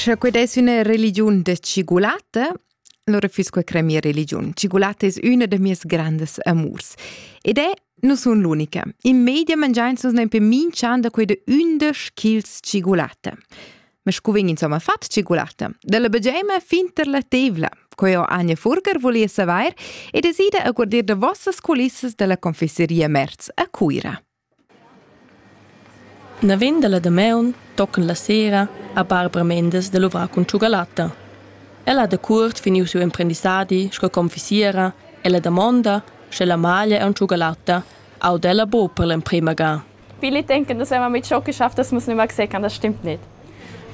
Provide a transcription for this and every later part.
Sche qued es üna religiun da tschigulata, allora füss que crè mia religiun. Tschigulata es üna da mieas grandes amurs. Ed è nu sun l'unica. In media mangiains nus nempe minch'an da queda ündesch chils tschigulata. Ma scu vegn insomma fat tschigulata? Dalla bageima fin tar la tevla. Queo Anja Furger volia savair e desida a guardir da vossas culissas dalla confesseria Merz a Cuira. Naven dalla damaun tocan la sera a Barbara Mendes da luvrar cun tschugalatta. Ella ha dacuort finiu siu emprendissadi sco confissiera ella damonda, sche la maglia e tschugalatta auda ella buc per l'emprema ga. Viele denken, dass wenn man mit Schock geschafft ist, muss man immer sechern. Das stimmt nicht.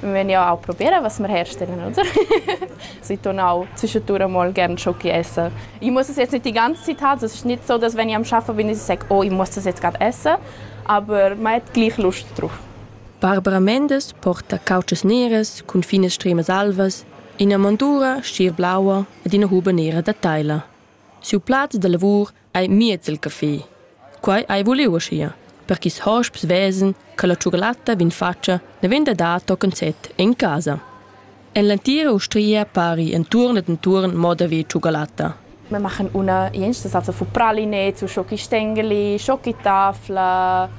vegniu au propiera, was mir herstellen oder? Sei tornau zwischendurch mal gern schon essen. Ich muss es jetzt nicht die ganze Zeit, es ist nicht so, dass wenn ich am Arbeiten bin, ich sage, oh, ich muss das jetzt gerade essen, aber man hat gleich Lust drauf. Barbara Mendes porta cauces neras cun finas stremas alvas, ina mondura, schier blaua ed ina huba nera da teila. Siu plaz da lavur ei miez il caffè. Quei ei vuliu aschia, per ch'ils hosps vesen che la tschugalatta vegn fatga naven da dar tochen set en casa. En l'entira ustria pari entuorn ed entuorn moda vi tschugalatta. Me machen una jensta salsa fu pralinets, u schoki stengeli, schoki tafla,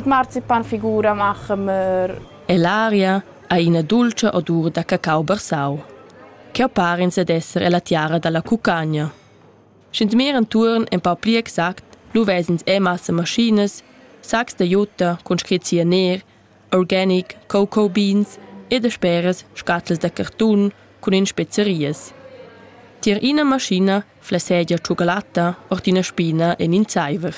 marzipanfigura machen wir. E l'aria ha ina dolce odur da cacao barsau, che parens ad esser è la tiara dalla cucagna. Sch'ins mir entuorn empau pli exact, lu ves'ins era massa maschinas, saccs da jutta cun scrit cianer, organic, cocoa beans e dasperas scatlas da cartun cun in spezarias. Tier ina maschina flassegia tschucalatta ord ina spina en in zeiver.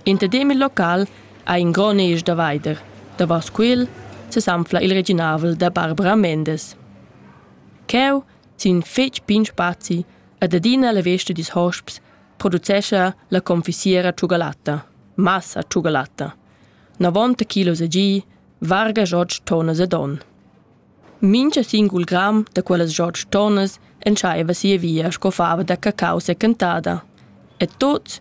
In tadem il local ha in gron esch da veider. Davos quel sesanfla il reginavel da Barbara Mendes. Cheu, sin fetg pign spazi, ed adina la vesta dils hosps producescha la confisiera tschugalatta, massa tschugalatta. 90 kg a gi, varga jots tonas ed on. Mincha singul gram da quellas jots tonas entschaiva sia via sco fava da cacau secantada. E tots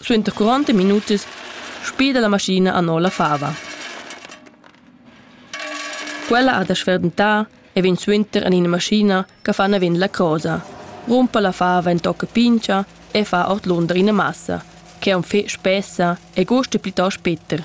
Suenter curonta minutas spida la maschina anora la fava. Quella ha da sferdentà e vegn suenter en ina maschina che fa naven la crosa, rumpa la fava en tocca pincha e fa ordlunder ina massa, che on fe spessa e gusta plitost Peter.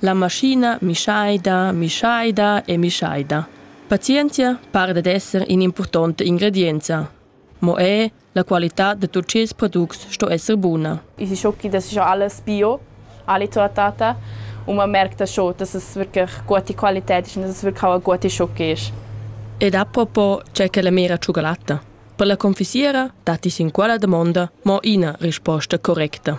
La maschina mischaida, mischaida e mischaida. Pazienzia para dad esser in'impurtonta ingredienza. Mo er la qualitad da tuts ils products sto esser buna. I si schochi da scha alles bio, alle trattata, und man merkt das schon, dass es wirklich gute Qualität ist und dass es wirklich auch eine gute Schoki ist. Ed apropos c'è che la mera cioccolata. Per la confissiera datti sin quella domanda mo ina risposta correcta.